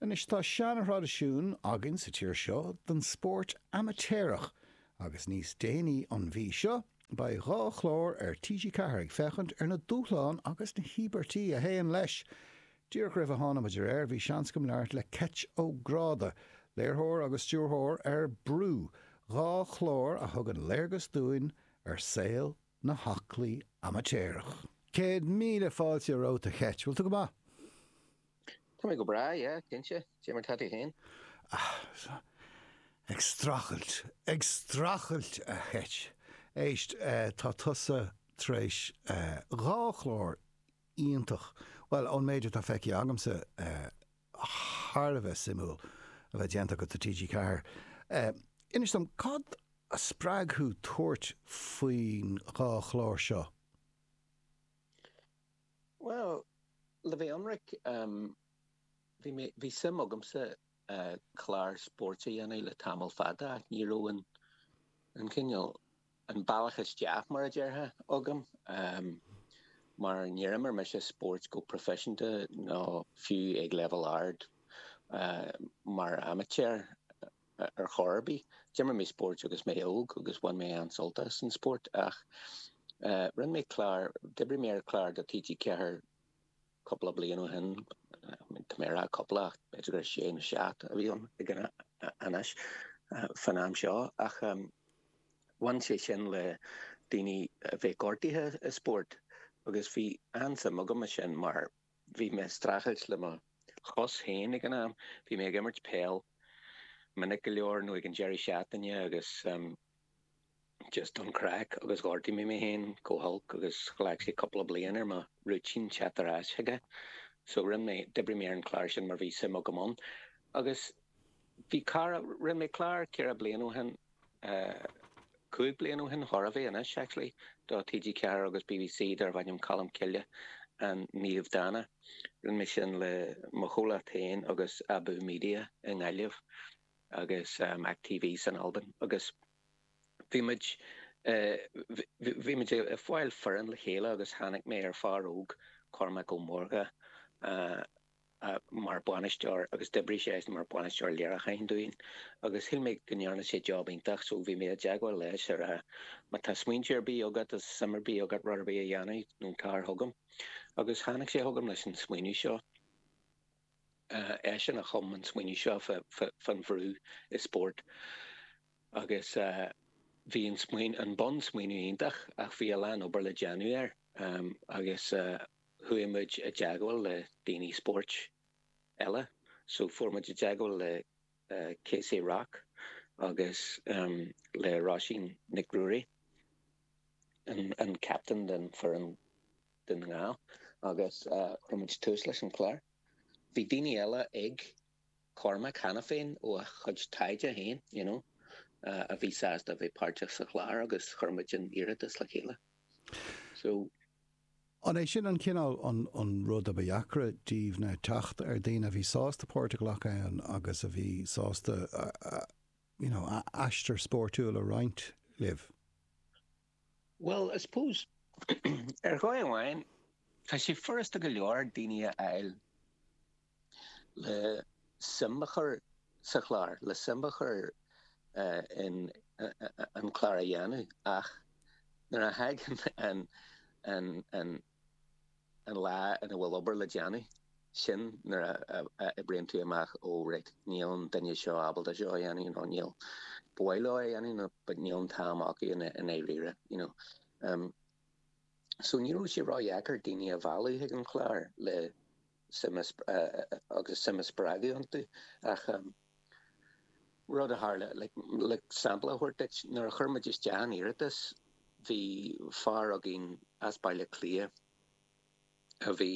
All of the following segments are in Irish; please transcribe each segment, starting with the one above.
Anois tá seanthraidisiún againn sa tír seo den spórt amaitéarach agus níos déanaí an mhí seo beidh dhá chlár ar TG4 ag féachaint ar na dúshláin agus na híobairtí a théann leis. Díreach roimh a tháinig muid ar aer bhí seans agam labhairt le Keith Ó Gráda, léiritheoir agus stiúrthóir ar Brú, dhá chlár a thugann léargas dúinn ar saol na haclaí amaitéarach. Céad míle fáilte romhat a Keith. Bhfuil tú go maith? Tá mé go breá, yeah, cinnte, Dé mar tá tú féin? Ahh, ag strachailt, ag strachailt a Keith! Éist, tá tusa tar éis dhá chlár iontach, bhuel, ón méid atá feicthe agamsa, thar a bheith suimiúil a bheith déanta agat do TG4. Inis dom, cad a spreag thú tabhairt faoin dhá chlár seo? Bhuel, le bheith ionraic, bhí mé, bhí suim agamsa clár spóirt a dhéanamh le tamall fada ach ní raibh an, an cineál, an bealach isteach, mar a déarfá, agam mar níor imir mise spóirt go proifisiúnta ná fiú ag leibhéal ard, mar amaitéar. ar chor ar bith. D'imir mé spóirt agus mé óg agus bhain mé an-sult as an spórt ach rinne mé clár, d'oibrigh mé ar chlár do TG4 cúpla bliain ó shin, tá mé a rá cúpla ach b'fhéidir gur sé nó seacht a bhí ann ag an, anois, fán am seo, ach bhain sé sin le daoine a bheith gortaithe i spórt agus bhí an-suim agam ansin mar, Bhí mé streachailt le mo chos féin ag an am. Bhí mé ag imirt peil minic go leor nó ag an deireadh seachtaine agus just don chraic agus ghortaigh mé mé féin go holc agus ghlac sé cúpla bliain ar mo rúitín teacht ar ais chuige. So rinne mé, d'oibrigh mé ar an clár sin mar bhí suim agam ann. Agus bhí cara, rinne mé clár ceithre bliana ó shin Cúig bliain ó shin, chóir a bheith anois, actually, do TG4 agus BBC darbh ainm Colm Cille An Naomh Dána. Rinne mé sin le mo chomhlacht féin agus Abú Media i nGaillimh agus MacTV san Albain agus bhí muid bhí muid ag fáil foireann le chéile agus tháinig mé ar fear óg, Cormac Ó Mórdha, mar bhainisteoir agus d'oibrigh sé mar bhainisteoir léiriúcháin dúinn agus shíl mé go ndearna sé job iontach so bhí mé i dteagmháil leis ag rá má tá smaointe ar bith agat is suim ar bith agat rud ar bith a dhéanamh nó tar chugam agus tháinig sé chugam leis an smaoineamh seo eisean a chum an smaoineamh seo fán bhrú i spórt agus bhí an smaoineamh an bunsmaoineamh iontach ach bhí a lán obair le déanamh air agus chuaigh muid i dteagmháil le daoine spóirt eile, so chuaigh muid i dteagmháil le Casey Rock agus le Roisín Nic Ruairí, an captain den foireann Dún na nGall, agus chuir muid tús leis an chlár. Bhí daoine eile ag Cormac cheana féin ó a chuid taighde féin you know a bhí sásta a bheith páirteach sa chlár agus chuir muid an iarratas le chéile. So. An é sin an cineál an rud a ba dheacra daoibh ná teacht ar daoine a bhí sásta páirt a ghlacadh ann agus a bhí sásta you know aistear spóirtiúil a roinnt libh? Bhuel, I suppose, ar dhóigh amháin, tá sé furasta go leor daoine a fháil. le suim a chur sa chlár, le suim a chur in an clár a dhéanamh ach nuair a thagann an lá ina bhfuil obair le déanamh, sin nuair a oibríonn tú amach, ó raight, níl an duine seo ábalta seo a dhéanamh nó níl, ba mhaith leo é a dhéanamh but níl an t-am acu i ndáiríre, you know. So ní raibh sé ró-dheacair daoine a mhealladh chuig an chlár le. agus suim a spreagadh iontu ach rud a tharla, like, sampla a thabhairt duit, nuair a chuir muid isteach an iarratas bhí fear againn as Baile Átha Cliath a bhí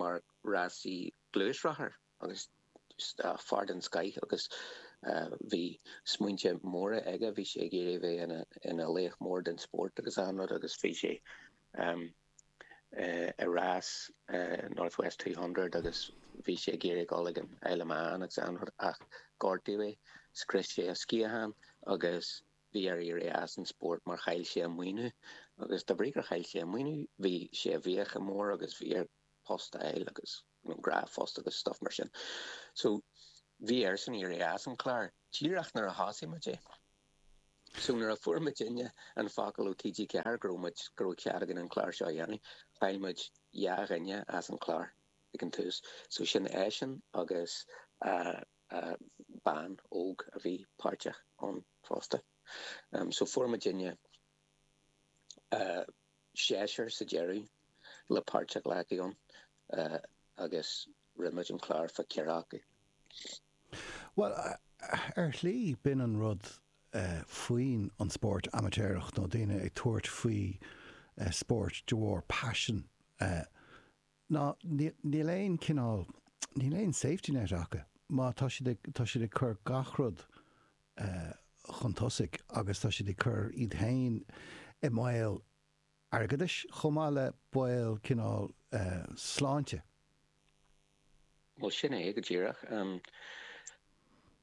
mar rásaí gluaisrothair agus fear den scoith agus bhí smaointe móra aige, bhí sé ag iarraidh a bheith ina laoch mór den spórt agus an-rud agus bhí sé i rás North West Two Hundred agus bhí sé ag iarraidh dul ag an Isle of Man agus an-rud ach gortaíodh é, scrios sé a sciathán agus bhí air éirí as an spórt mar chaill sé a maoiniú agus de bhrí gur chaill sé a maoiniú bhí sé i bhfiacha mór agus bhí air post a fháil agus. dhá phost agus stuff mar sin. So bhí airsean éirí as an chlár díreach nuair a thosaigh muid é. So nuair a fuair muidinne an focal ó TG4 go raibh muid, go raibh cead againn an clár seo a dhéanamh, chaill muid dhá dhuine as an chlár ag an tús. So sin eisean agus bean óg a bhí páirteach ann fosta. So fuair muidinne seisear sa deireadh le páirt a ghlacadh ann agus rinne muid an clár fá cheathrar acu. Bhuel, ar shlí, b'in an rud faoin an spórt amaitéarach nó daoine ag tabhairt faoi spórt de bharr paisean. ná níl aon cineál, níl aon safety net acu, má tá siad ag, tá siad ag cur gach rud chun tosaigh agus tá siad ag cur iad féin i mbaol airgeadais chomh maith le baol cineál sláinte. Bhuel, sin é go díreach.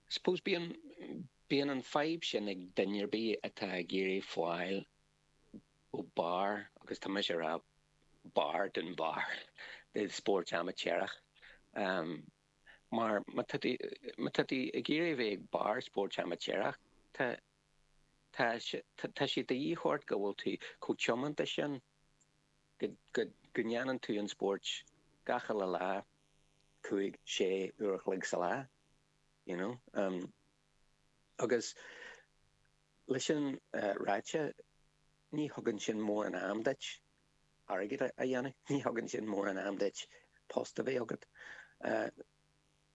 Suppose bíonn, bíonn an fhadhb sin ag duine ar bith atá ag iarraidh fáil. go barr, agus tá mise ag rá barr den bharr i spórt amaitéarach. Mar má tá tú ag iarraidh a bheith ag barr spóirt amaitéarach, tá sé de dhíth ort go bhfuil tú chomh tiomanta sin go ndéanann tú an spórt gach uile lá, cúig, sé, uair a chloig sa lá, you know. Agus. Leis sin ráite, ní thugann sin mórán am duit airgead a dhéanamh, ní thugann sin mórán am duit post a bheith agat.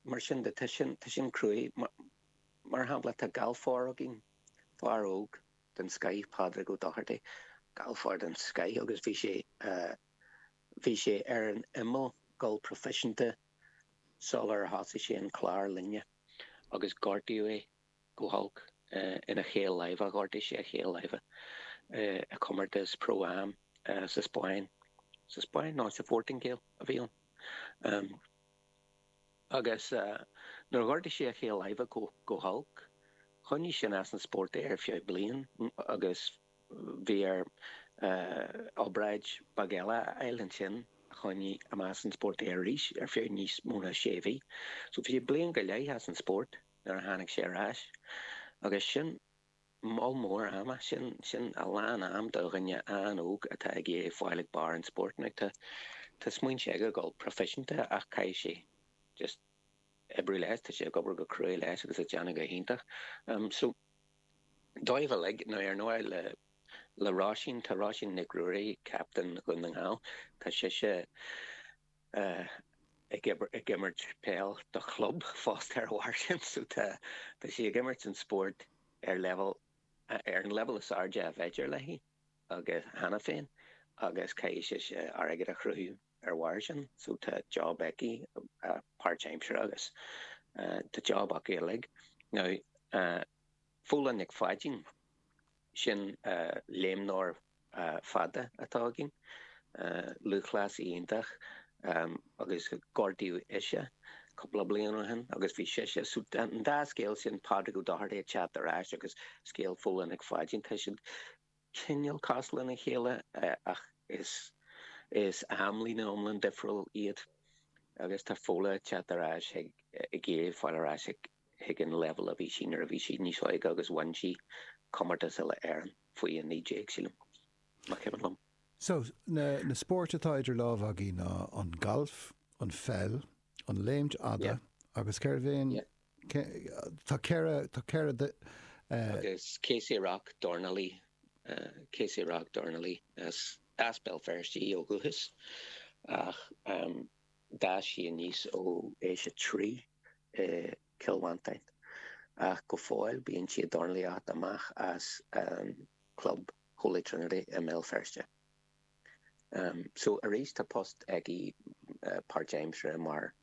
Mar sin de, tá sin, tá sin cruaidh. Mar shampla, tá galfár againn, fear óg den scoith, Pádraig Ó Dochartaigh, galfár den scoith agus bhí sé, bhí sé ar an imeall dhul proifisiúnta sular thosaigh sé an clár linne agus gortaíodh é. go holc ina chaol láimhe, ghortaigh sé a chaol láimhe i gcomórtas Pro Am sa Spáinn, sa Spáinn nó sa Phortaingéil a bhí ann, agus nuair a ghortaigh sé a chaol láimhe go holc, choinnigh sin as an spórt é ar feadh bliain agus bhí air obráid bheag eile a fháil ansin a choinnigh as an spórt é arís ar feadh níos mó ná sé mhí. So bhí sé bliain go leith as an spórt. nuair a tháinig sé ar ais. Agus sin moll mór ama, sin a lán am do dhuine an-óg atá ag iarraidh fáil ag barr an spóirt. Now tá smaointe aige a dhul proifisiúnta ach caithfidh sé just oibriú leis, tá sé ag obair go cruaidh leis agus ag déanamh go hiontach. So dóibh uilig, now ar ndóigh le Róisín, tá Róisín Nic Ruairí, captain Dhún na nGall, tá sise, ag imirt peil do chlub fosta ar bharr sin. So tá sí ag imirt an spóirt ar leibhéal, ar an leibhéal is airde ab fhéidir léi agus, cheana féin agus caithfidh sise airgead a chruthú ar bharr sin. So tá job aici, páirtaimsire agus tá job acu uilig. Now. Fódhla Nic Pháidín, sin léimneoir fada atá againn, lúthchleasaí iontach, agus gortaíodh ise cúpla bliain ó shin agus bhí sise, so an dá scéal sin, Pádraig Ó Dochartaigh ag teacht ar ais agus scéal Fódhla Nic Pháidín, tá siad cineál cás lena chéile ach is amlíne iomlán difriúil iad agus tá Fódhla ag teacht ar ais, ag iarraidh fáil ar ais chuig an leibhéal a bhí sí nuair a bhí sí níos óige agus bhain sí comórtas uile-Éireann faoi 19, sílim, más cuimhin liom. So, na spóirt atá idir lámha againn ná an galf, an pheil, an léimt fhada agus cérbh é an Tá ceithre, tá ceithre de. Agus Kaci Rock, dornálaí. Kaci Rock, dornálaí. Is as Béal Feirste í ó dhúchas ach d'fhás sí aníos ó aois a trí i gCill Mhantáin. Ach go fóill bíonn sí ag dornálaíocht amach as an gclub Holy Trinity i mBéal Feirste. So arís tá post aici páirtaimseartha mar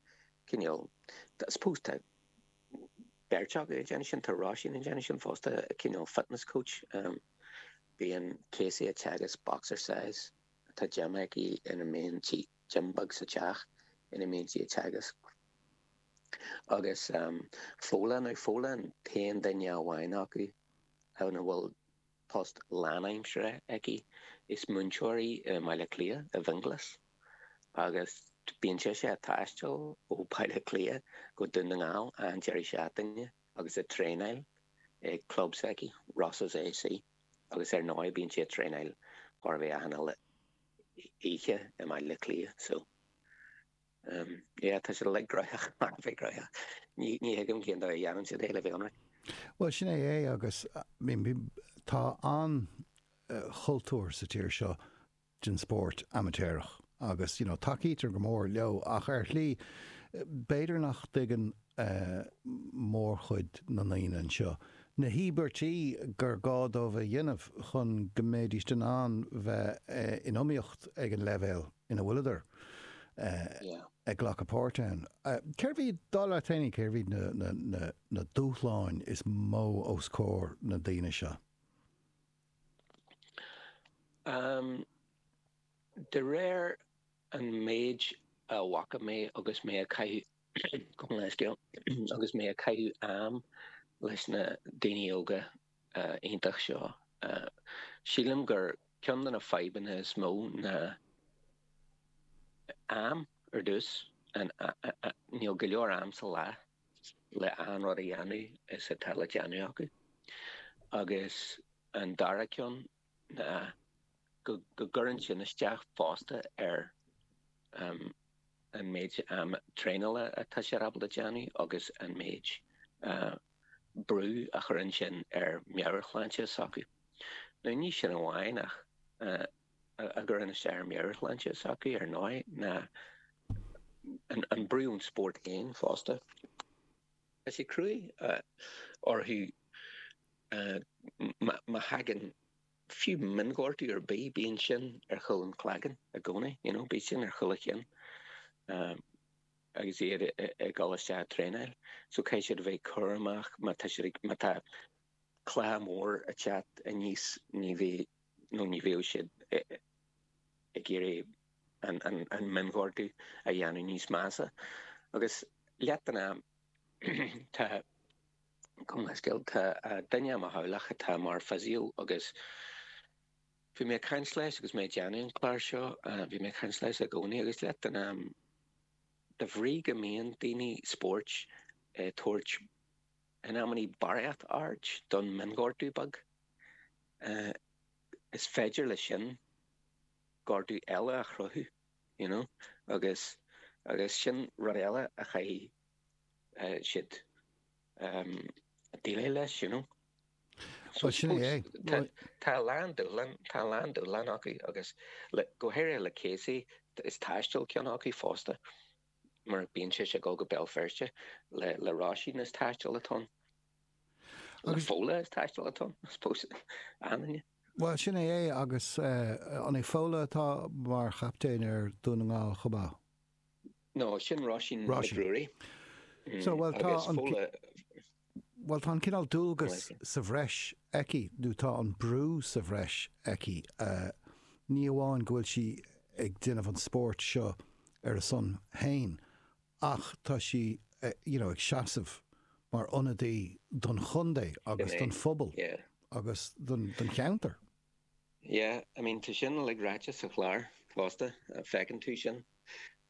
cineál, I suppose tá beirt acu ag déanamh sin, tá Róisín ag déanamh sin fosta, cineál fitness coach. Bíonn Kaci ag teagasc boxercise, tá gym aici ina mbíonn sí, gym beag sa teach ina mbíonn sí ag teagasc. Agus Fódhla an, Fódhla an t-aon duine amháin acu ann a bhfuil post lánaimseartha aici, is múinteoir í i mBaile Átha Cliath, i bhFionnghlas, agus bíonn sise a' taisteal ó Bhaile Átha Cliath go Dún na nGall achan deireadh seachtaine agus a' traenáil ag club s'aici, Rosses A.C. agus ar ndóigh bíonn sí a' traenáil chóir a bheith achan uile oíche i mBaile Átha Cliath so. Sea, tá siad uilig gnoitheach, thar a bheith gnoitheach. Ní thuigim cén dóigh a dhéanann siad é le bheith ionraic. Bhuel, sin é é agus tá an-chultúr sa tír seo den spórt amaitéarach agus you know tacaítear go mór leo ach ar shlí b'fhéidir nach dtuigeann mórchuid na ndaoine anseo na híobairtí gur gá dóibh a dhéanamh chun go mbeidís in ann bheith in iomaíocht ag an leibhéal ina bhfuileadar ag glacadh páirt ann. Cérbh iad, dar leat féin, cérbh iad na dúshláin is mó os comhair na ndaoine seo? De réir an méid a bhfaca mé agus mé ag caitheamh Gabh mo leithscéal agus mé ag caitheamh am leis na daoine óga iontach seo. Sílim gur ceann de na fadhbanna is mó ná am. Ar dtús, níl go leor am sa lá le achan rud a dhéanamh is atá le déanamh acu. Agus an dara ceann ná go gcuireann sin isteach fosta ar an méid traenála atá siad ábalta déanamh agus an méid brú a chuireann sin ar mheabhairshláinte s'acu. Nó ní sin amháin a gcuireann isteach ar mheabhairshláinte s'acu ar ndóigh ná an brú ón spórt féin fosta. Tá sé cruaidh orthu. Má thagann fiú mionghortú ar bith, bíonn sin ar chúl an chloiginn i gcónaí, you know, bíonn sin ar chúl an chinn agus iad ag dul isteach ag traenáil. So caithfidh siad a bheith cúramach má tá siad ag, má tá cluiche mór ag teacht aníos, ní bheidh, nó ní bheadh siad ag iarraidh an mionghortú a dhéanamh níos measa. Agus leath den am, tá, Chun scéal, tá duine i mo theaghlach atá mar physio agus bhí mé ag caint leis agus mé ag déanamh an chláir seo, bhí mé ag caint leis i gcónaí agus leath den am, de bhrí go mbíonn daoine spóirt ag tabhairt in amannaí barraíocht aird ar an mionghortú beag, is féidir le sin gortú eile a chruthú, you know, agus, agus sin rud eile a chaithfidh siad a dhéileáil leis, you know. Bhuel, sin é. Tá a lán dúshlán, tá a lán dúshlán acu agus go háirithe le Casey, is taisteal ceann acu fosta mar bíonn sé ag dul go Béal Feirste le Roisin is taisteal atá ann, le Fódhla is taisteal atá ann, I suppose. Bhuel, sin é agus an í Fódhla atá mar chaptaen ar Dhún na nGall chomh maith? No, sin Roisin McGrory. So, bhuel, tá an, bhuel, tá an cineál dualgas sa bhreis aici, nó tá an brú sa bhreis aici, ní amháin go bhfuil sí ag déanamh an spóirt seo ar a son féin ach tá sí, you know, ag seasamh mar ionadaí don chontae agus don phobal agus don cheantar. Yeah, I mean, tá sin uilig ráite sa chlár fosta, feiceann tú sin.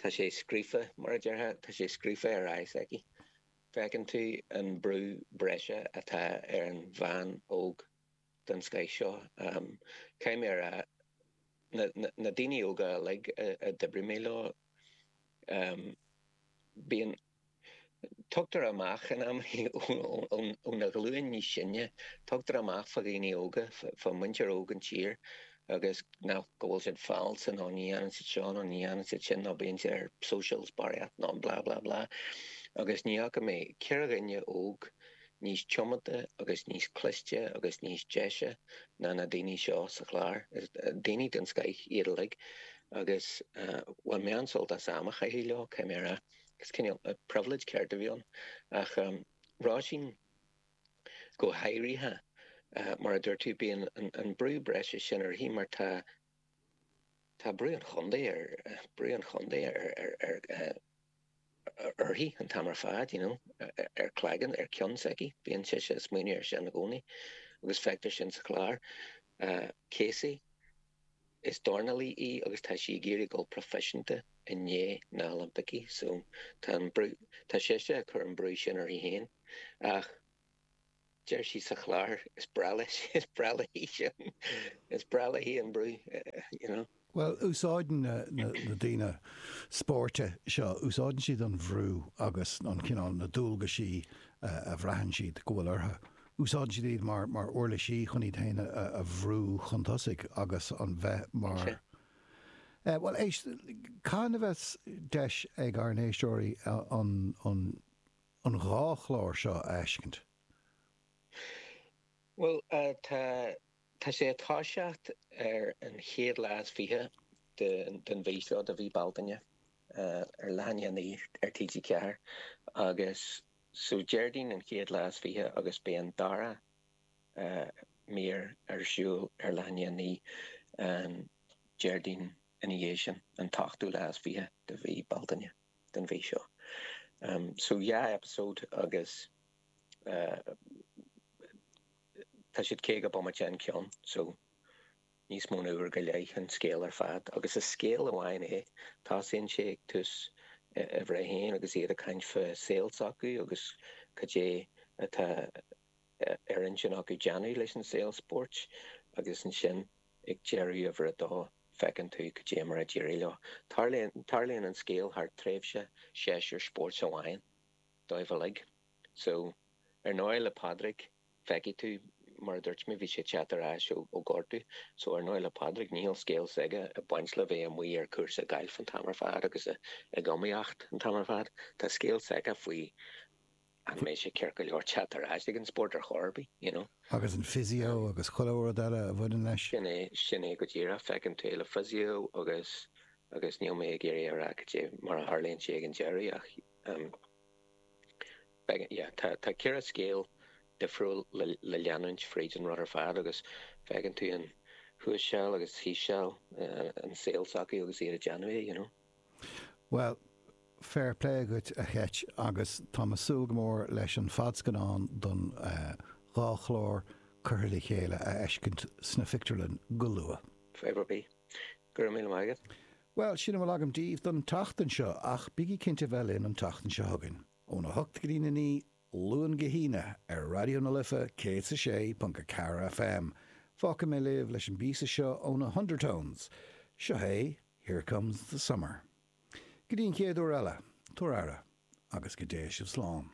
Tá sé scríofa, mar a déarfá, tá sé scríofa ar aghaidh s'aici. Feiceann tú an brú breise atá ar an bhean óg den scoith seo. Caithfidh mé a rá, na daoine óga uilig a d'oibrigh mé leo, bíonn, Tugtar amach in amannaí ó na ghlúin níos sine, tugtar amach fá dhaoine óga, fá mhuintir óg an tír agus nach, go bhfuil siad falsa nó ní dhéanann siad seo nó ní dhéanann siad sin nó bíonn siad ar socials barraíocht nó blah blah blah. Agus ní fhaca mé ceathrar daoine óga níos tiomanta agus níos cliste agus níos deise ná na daoine seo sa chlár. Daoine den scoith iad uilig agus bhain mé an-sult as am a chaitheamh leo, caithfidh mé a rá. Is cineál pribhléid ceart a bhí ann, ach Roisín go háirithe. Mar a dúirt tú, bíonn an brú breise sin uirthi mar tá brú an chontae uirthi an t-am ar fad, ar cloigeann, ar cionn s'aici. Bíonn sise ag smaoineamh air sin i gcónaí agus feictear sin sa chlár. Casey. Is dornálaí í agus tá sí ag iarraidh dul proifisiúnta i ndiaidh na Oilimpicí so tá an brú, tá sise ag cur an brú sin uirthi féin ach deir sí sa chlár is breá leis, is breá léi sin, is breá léi an brú you know. Bhuel, úsáideann na daoine spóirt seo, úsáideann siad an bhrú agus an cineál, na dualgaisí a bhraitheann siad go bhfuil orthu úsáideann siad iad mar uirlisí chun iad féin a bhrú chun tosaigh agus an bheith mar Bhuel, éist, cathain a bheas deis ag ár n-éisteoirí an dhá chlár seo a fheiscint? Bhuel, tá Tá sé ag toiseacht ar an chéad lá is fiche den mhí seo de mhí Bealtaine ar leath i ndiaidh a naoi ar TG4 agus so Déardaoin an chéad lá is fiche agus beidh an dara mír ar siúl ar leath i ndiaidh a naoi an Déardaoin ina dhiaidh sin, an t-ochtú lá is fiche de mhí Bealtaine den mhí seo. So dhá eipeasóid agus. tá siad 50 bomaite an ceann so níos mó na uair go leith an scéal ar fad agus is scéal amháin é. Tosaíonn sé ag tús uimhir a haon agus iad ag caint fá saol s'acu agus cad é atá ar intinn acu déanamh leis an saol spóirt agus ansin ag deireadh uimhir a dó feiceann tú cad é mar a d'éirigh leo. Tarlaíonn an scéal thar tréimhse séasúr spóirt amháin dóibh uilig. So, ar ndóigh le Pádraig, feicfidh tú, mar a dúirt mé, bhí sé ag teacht ar ais ó gortú, so, ar ndóigh le Pádraig, níl scéal s'aige ag baint le bheith amuigh ar cúrsa gailf an t-am ar fad agus ag iomaíocht an t-am ar fad. Tá scéal s'aige faoi an mbeidh sé ceart go leor teacht ar ais ag an spórt ar chor ar bith, you know. Agus an physio agus chuile rud eile a bhaineann leis. Sin é, sin é go díreach, feiceann tú é le physio agus, agus níl mé ag iarraidh a rá cad é mar a tharlaíonn sé ag an deireadh ach. Tá ceithre scéal difriúil le leanúint fríd an rud ar fad agus feiceann tú an thuas seal agus thíos seal an saol s'acu agus iad ag déanamh é, you know. Bhuel, fair play dhuit a Cheit agus táim a súil go mór leis an fadscannán don dhá chlár curtha le chéile a fheiscint sna phictiúrlainn go luath. Fair play. Go raibh míle maith agat. Bhuel, sin a bhfuil agam daoibh don tseachtain seo, ach bígí cinnte a bheith linn an tseachtain seo chugainn, óna hocht go dtí a naoi, Luan go hAoine, ar Raidió na Life 106.4 FM. Fágfaidh mé libh leis an bpíosa seo ó na hUndertones. Seo é Here Comes the Summer. Go dtí an chéad uair eile, tabhair aire, agus go dté sibh slán.